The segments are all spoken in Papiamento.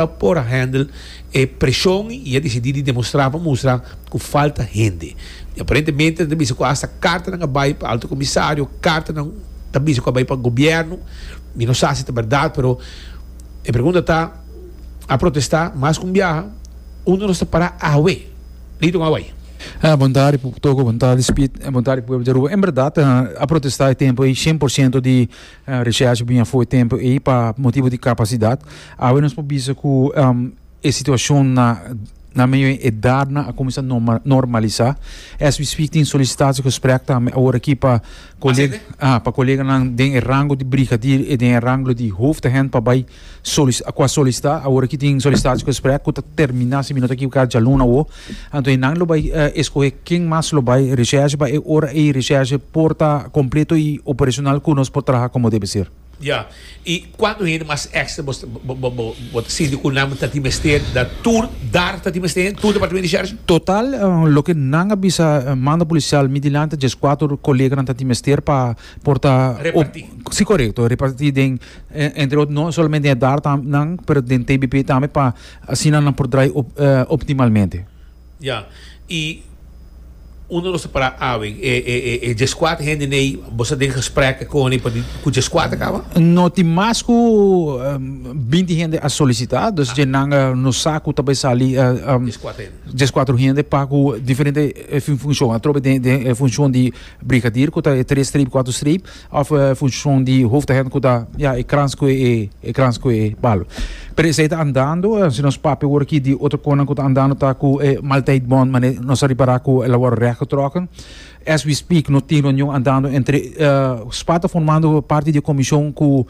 Ta por a handle e presion y a decidi di demostra pa mustra cu falta hende. Y aparentemente nan ta bisa cu hasta cartanan a bay pa Alto Comisario, cartanan ta bisa cu a bay pa Gobierno. Mi no sa si ta berdad pero e pregunta ta, a protesta mas cu un biaha, unda nos ta para awe? Leyton a bay. Bon tarde Toco, bon tarde Speed, bon tarde pueblo di Aruba. En berdad a protesta e tempo ey cien por ciento di Reshersh bin a fo'i tempu ei pa motibu di kapasidat. Awe nos por bisa ku e situashon na na medio e edatnan a kuminsá norma normalisá. As we speak tin solisitasie gesprek tambe awor aki pa koleg pa koleganan den e rango di brigadir i den e ranglo di hoofdagent pa bai Ku a solisitá awor ki tin solisitaci ku esprek ku ta terminá, si mi no ta ekivoká djalun awo. Anto e nan lo bai eskohé ken mas lo bai reshèrshe pa e ora ei reshèrshe por ta kompleto i operashonal ku nos por traha komo debe ser. Ya. I kuantu hende mas èkstra bo bo ta sinti ku nan ta tin mester da tur dar ta tin mester tur departamento di shèrshe? Total loke nan a bisa manda polisial mi dilanti djes kuater koleganan ta tin mester pa por ta Repartí. Si korekto, repartí den entre otro no solamente den e dar nan pero den TBP tambe pa asina nan por draai op, eh, optimalmente. Ya, i uno lo separa awe, e, e, e, e djeskuat hende nei, boso den gesprek koni pa di ku djeskuat a kaba? No tin mas ku em, binti hende a solisitá, dus dje nan eh, nos sa ku ta bai sali eh, em, Djeskuat hende. djeskuatro hende pa ku diferente eh, fun- funshon. Atrobe den den e funshon di brigadier ku ta e tres streep, kuatro streep. Of e funshon di hoofdagent ku ta ya e krans ku e e krans ku e balo. Pero esei ta andando, si nos papia wor aki di otro konan ku ta andando ta ku e maltijt bon mane nos a ripará ku el a wòrdu rèk getrokken. As we speak no tin reunion andando entre spa ta formando parti di e komishon ku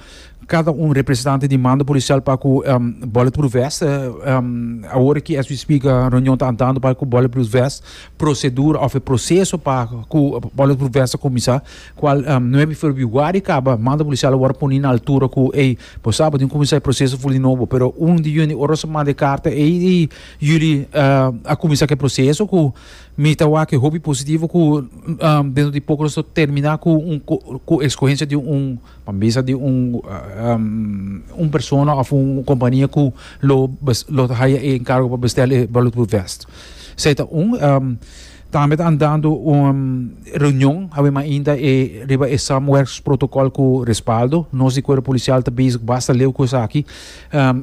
kada un representante di mando polisial pa ku bulletproof vest. Awor aki as we speak reunion ta andando pa ku bulletproof vest prosedura of e proseso pa ku bulletproof vest a kuminsá. Cual nuebe ferbiuari caba manda policial a wor poni na altura cu ey bo sa bo tin cuminsa e proceso full di nobo pero uno di yunde ora su manda e carta ey y yuli a cuminsa cu e proceso cu mi ta wak hopi positivo cu dentro di poco nos ta termina cu un cu escogencia di un pa bisa di un un persona of un compania cu lo bes lo haya e encargo pa bestel e bullet proof vest esey ta un. Tambe ta andando un reunion awe mainta e riba e Samwerks protocol cu respaldo. Nos di Cuerpo Policial ta bezig basta leu cu esaki.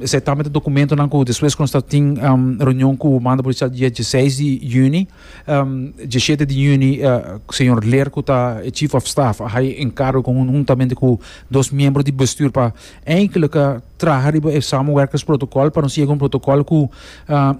Esey tambe ta documentonan cu despues cu nos ta tin reunion cu Mando Policial di dia dieseis di juni, dieschete di juni señor Ler cu ta e Chief of Staff a haye encargo con un huntamente cu dos miembro di bestuur pa Eigenlijk traha riba e samenwerkingsprotokòl pa nos yega un protokòl ku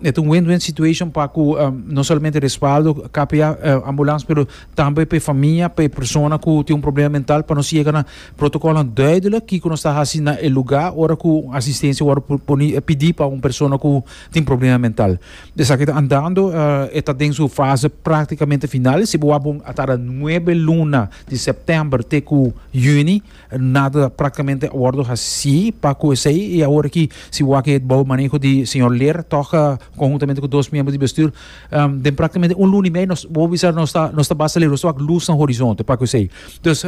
e ta un win-win situation pa ku no solamente respaldo KPA Ambulans pero tambe pa e famia, pa e persona ku tin un problema mental pa nos yega na protokòlnan duidelik kiko nos ta hasi na e lugá ora ku un asistensia wòrdu poni pidi pa un persona ku tin problema mental. Esaki ta andando e ta den su fase praktikamente final si bo a bon a tarda nuebe luna di sèptèmber te ku yüni. Nada practicamente a wordo haci pa cu esey y awor aki si wak e bou maneho di señor Ler toca conhuntamente cu dos miembro di bestuur den practicamente un luna y medio nos wou bisa nos ta nos ta basta lero nos ta wak luz na horizonte pa cu esey dus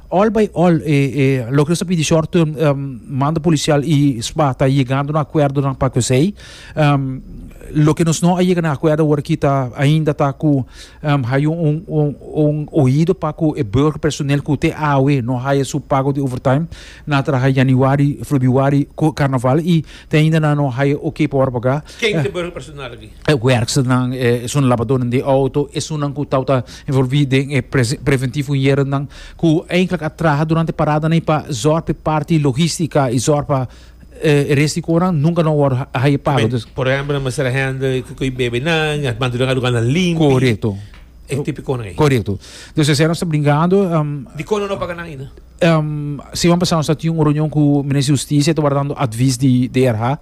all by all e e loke nos ta pidi short mando policial y sba ta yegando na acuerdonan pa cu esey loke nos no a yega na acuerdo awor aki ta ainda ta cu Haya un oido pa cu e burger personeel cu te awe no haya su pago di overtime na traha januari, februari cu carnaval y te ainda nan no haya ok pa word paga. Ken ta e burger personeel aki? E werksternan, esun labadonan di auto, esunnan cu tawata envolvi den e preventivo hiernan cu eigenlijk a traha durante paradanan y pa zorg pa e parti logistica y zorg pa e res di koran nunka no wòrdu haye pago. Dus, Por ehempel, nan mester a hende ku koi bebenan, a mantu den a lugar nan limpi. korekto, E tipikonan ei. korekto. Dus esei nos ta brinkando. em, Di konan no paga nan ainda? em, siman pasá nos a tin un reunion ku Minister di Hustisia, e tabata dando advis di DRH.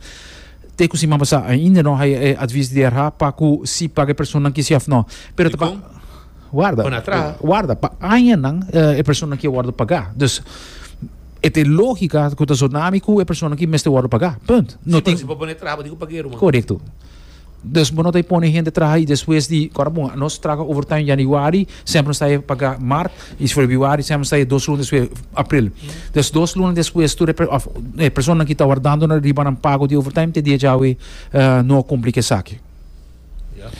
Te ku siman pasá ainda no haye e advis di DRH pa ku si paga e personanan kisi òf no. Pero ta pa. Dikon? Warda, Pon atrás. eh, warda, pa añanan eh, e persona ki a wordo pagá. Dus, et e lógica ku ta zonami ku e persona ki mester wordo pagá. Punt. No Sí, tin, pero si pa poner atrás, pa digo pa guero, man. Correcto. Dus bo no te pone gente traha y después di cora bon, nos traga overtime januari, sempre nos está paga mart y februari sempre nos está dos lunes después april. Dus dos lunes después tu repre- of, eh, persona ki ta wardando na riba nan pago di overtime te dia jawe eh, no complica esaki.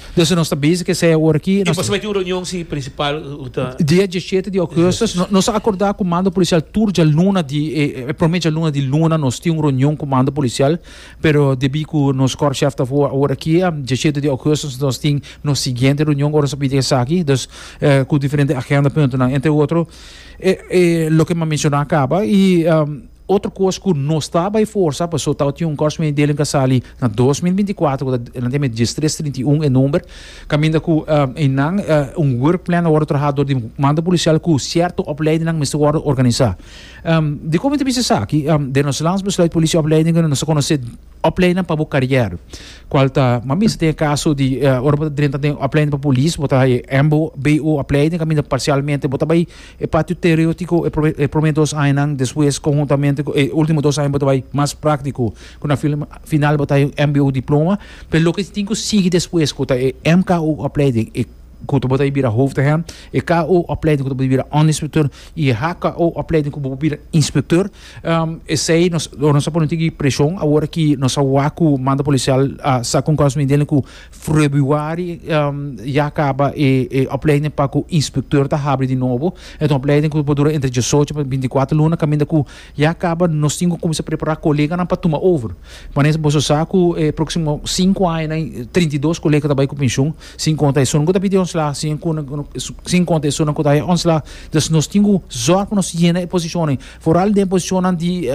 Entonces nos ta bizi ke esei ora aki. Nos ta bizi ke esei ora aki. Dia diesiete di augustus nos a akorda ku mando polisial tur djaluna di e prome djaluna di luna nos tin un reunion ku mando polisial pero debí ku nos kòrpshèf ta afó ora aki diesiete di augustus nos tin nos siguiente reunion ora nos a pidi esaki dus ku diferente agenda puntonan entre otro loke mi a menshoná kaba i. Otro kos ku nos ta bai forsa paso tabatin un kòrsou medio delen ka sali na dos mil binti kuater ku ta nan tene dies tres trinta i un e number kaminda ku einan un work plan a wòrdu traha dor di manda polisial ku sierto opleidinan mester wòrdu organisá. Dikon mi ta bisa esaki? Den nos Landsbesluit Polisie Opleidingen nos ta konosé opleinan pa bo karièr kual ta mami mester tin e kaso di ora bo ta drenta den opleiding pa polis bo ta haña e mbo, bo opleiding kaminda parsialmente bo ta bai E patio teoretiko e prome dos añanan, despues konhuntamente ku e ultimo dos aña bo ta bai mas praktiko, ku na final bo ta hay un mbo diploma, pero loke tin ku sigui despues ku ta e mko opleiding e ku bo ta bira hoofdagent, e ko opleiding ku ta bira onderinspektër i e hko opleiding ku bo por bira inspektër, esei nos ta pone un tiki preshon awor ki nos a wak ku manda polisial a sa kon kos mi den ku Februari ya kaba e opleiding pa ku inspektor ta habri di nobo e ta un opleiding ku por dura entre diesocho pa binti kuater luna kaminda ku ya kaba nos tin ku kuminsa prepará koleganan pa tuma over manera boso sa ku e próksimo sinku añanan trinta i dos kolega ta bai ku penshun sin konta esunnan ku ta pidi ontslá sin konta esunnan ku ta haña ontslá dus nos tin ku zòrg pa nos yena e posishonan foral den posishonnan di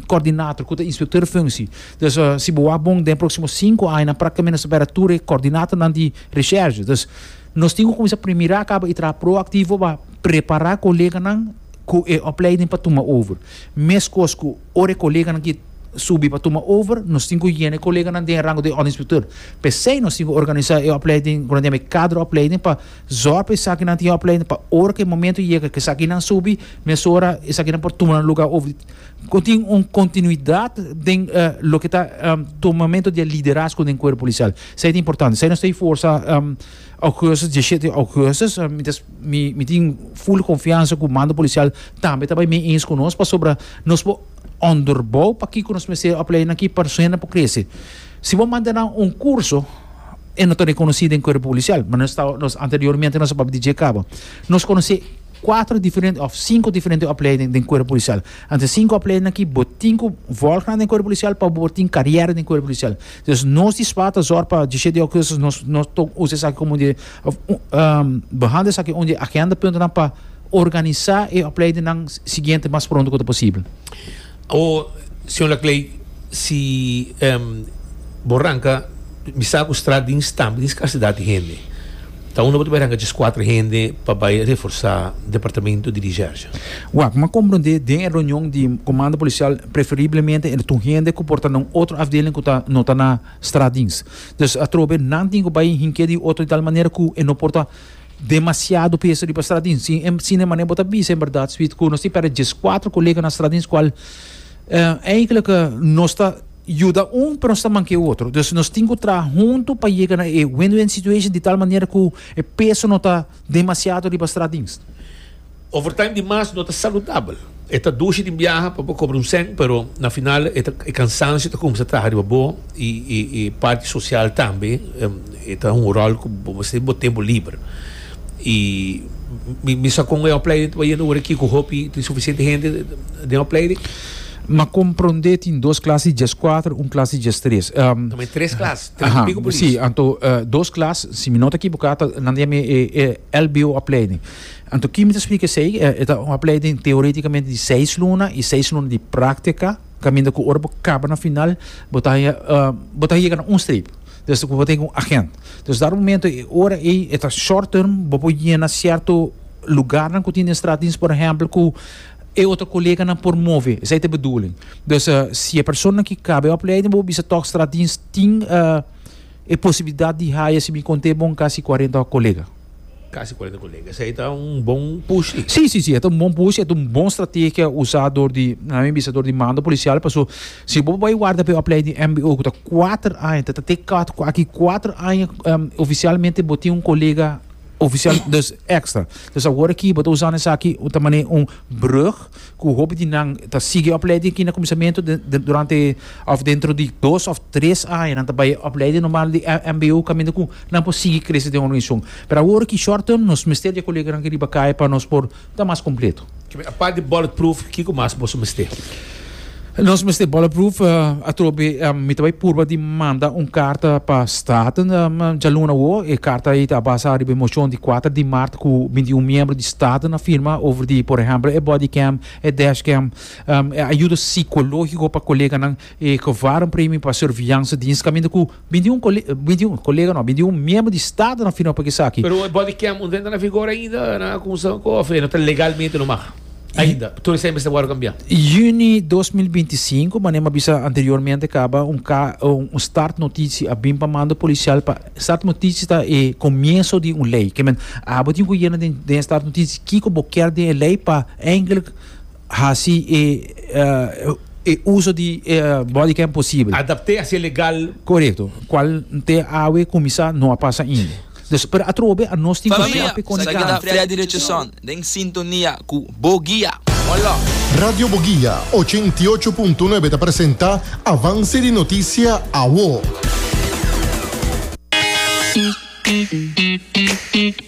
kòrdinator ku ta inspektor di funshi. Dus si bo wak bon den e próksimo sinku aña práktikamenti nos ta bira tur e kòrdinatonan di reshèrshe. Dus nos tin ku kuminsá pri mirá kaba i traha proaktivo pa prepará koleganan ku e opleiding pa tuma over. Meskos ku ora e koleganan ki subi pa tuma over nos tin ku yena e koleganan den e rango di òrdenspektor. P'esei nos tin ku organisá e opleiding ku nan yama e kadra opleiding pa zòrg pa esaki nan tin opleiding pa ora ku e momentu yega ku esakinan subi, mesora esakinan por tuma nan lugá over. Ku tin un kontinuidat den loke ta tomamentu di e liderazgo den kuerpo polisial. Esei ta importante. Esei nos ta e forsa Augustus, diesiete di Augustus. Mientras mi tin full konfiansa ku mando polisial tambe ta bai mee eens ku nos pasobra nos por onderbou pakiko nos mester e opleiding aki pa su hende por krese. Si bo manda nan un kurso e no ta rekonosí den kuerpo polisial. Nos anteriormente nos a papia di dje kaba. Nos konosé. Kuater diferente òf sinku diferente opleiding den kuerpo polisial. Anto e sinku opleiding akí bo tin ku vòlgnan den kuerpo polisial pa bo por tin karièra den kuerpo polisial. Dus nos di swa ta zòrg pa dishete di okursos nos nos ta usa esaki komo un di òf behande esaki un di e agenda puntonan pa organisá e opleidingnan siguiente mas pronto ku ta posibel. O Señor Laclay, si bo ranca bisa cu straat di Stam tin scarcidad di hende, ta uno bo ta bay ranca djes cuater hende pa bay reforsa departamento di Dijerja? Wak, bo m'a comprende den e reunion di Comando Policial preferiblemente e tur hende cu por ta na un otro afdeling cu ta no ta na straatdienst. Dus atrobe nan tin cu bay hinke di otro di tal manera cu e no por ta Demasiado peso riba stratin. Si en sine manera bo ta bisa en berdad Sweet cu nos tin perde djes cuatro colega na stratin cual eigenlijk nos ta yuda un pero nos ta manke e otro. Dus nos tin cu traha hunto pa yega na e win-win situation di tal manera cu e peso no ta demasiado riba stratin. Overtime di mas no ta saludabel. E ta dushi den biaha pa bo cobra un cent, pero na final e ta e cansancio ta cuminsa traha riba bo y y y parti social tambe e ta hunga un rol cu bo mester den bo tempo liber. Y mi mi sa con e opleiding ta bayendo ora aki cu hopi tin suficiente hende den e opleiding. M'a compronde tin dos klas di djes kuater, un klas di djes tres. No, ma e tres klas, tres Aha, pico polis. si, anto eh, dos klas, si mi no ta kibuká, ta, nan ta yama e, e LBO opleiding. Anto kimi ta splika esei? E ta un opleiding teoriticamente di seis luna y seis luna di practica, caminda cu ora bo caba na final bo ta haya bo ta yega na un streep, desde cu bo ta yega un agent. Entonces dado momento e ora ei e ta short term, bo por yena cierto lugarnan cu tin den straat dins por ehempel cu e otro coleganan por move, esei ta e bedoeling. Dus si e persona ki caba e opleiding bo por bisa tok straat dins tin e posibilidad di haya, si mi conte bon, casi cuarenta colega. Casi cuarenta colega. Esey ta un bon push li. Sí, sí, sí, e ta un bon push, e ta un bon strategia usá dor di, nan a mi bisa, dor di mando policial, paso si bo bai warda p'e opleiding di mbo ku ta kuater aña, ta ta te kòt ku aki kuater aña oficialmente bo tin un kolega oficial, dus extra. Dus awor aki bo ta usando esaki ta manera un brug. ku hopi di nan ta sigui opleiding aki na kuminsamentu den durante òf dentro di dos òf tres aña nan ta bai opleiding normal di MBO kaminda ku nan por sigui krese den organizashon pero awor aki short term nos mester e koleganan aki riba kaya pa nos por ta mas kompleto. Apart di bullet proof kiko mas boso mester? Nos mester bulletproof atrobe mi ta bai purba di manda un karta pa Staten djaluna awo. E karta ei ta basa riba e moshon di kuater di mart ku binti un miembro di Staten a firma over di por ehèmpel e bodycam, e dashcam, e ayuda sikológiko pa koleganan, e gevàrmpremio pa surveillance dienst kaminda ku Bin di un kole, bin di un kolega no, bin di un miembro di staf na firma pa ke saki. Pero e body cam unda e ta na vigor ainda, nan a kumsa ku of e no ta legalmente lo mag ainda? Tur esei mester wòrdu kambiá. Juni dos mil binti i sinku, manera mi a bisa anteriormente kaba, un ka, un start notisi a bin pa mando polisial pa, start notisi ta e komienso di un lei, ke men, abo tin ku yena den den e start notisi kiko bo ker den e lei pa, eindelijk, Hasi e e uso di e body cam posibel. Adapte hacia legal. Korekto, kual te awe kuminsá no a pasa ainda. Dus per atrobe anos tin Familia, sa keda Freddy Richardson den sintonia ku Bo Guia. Molo! Radio Bo Guia ocho i ocho punto nuebe ta presenta Avance di Noticia Awo.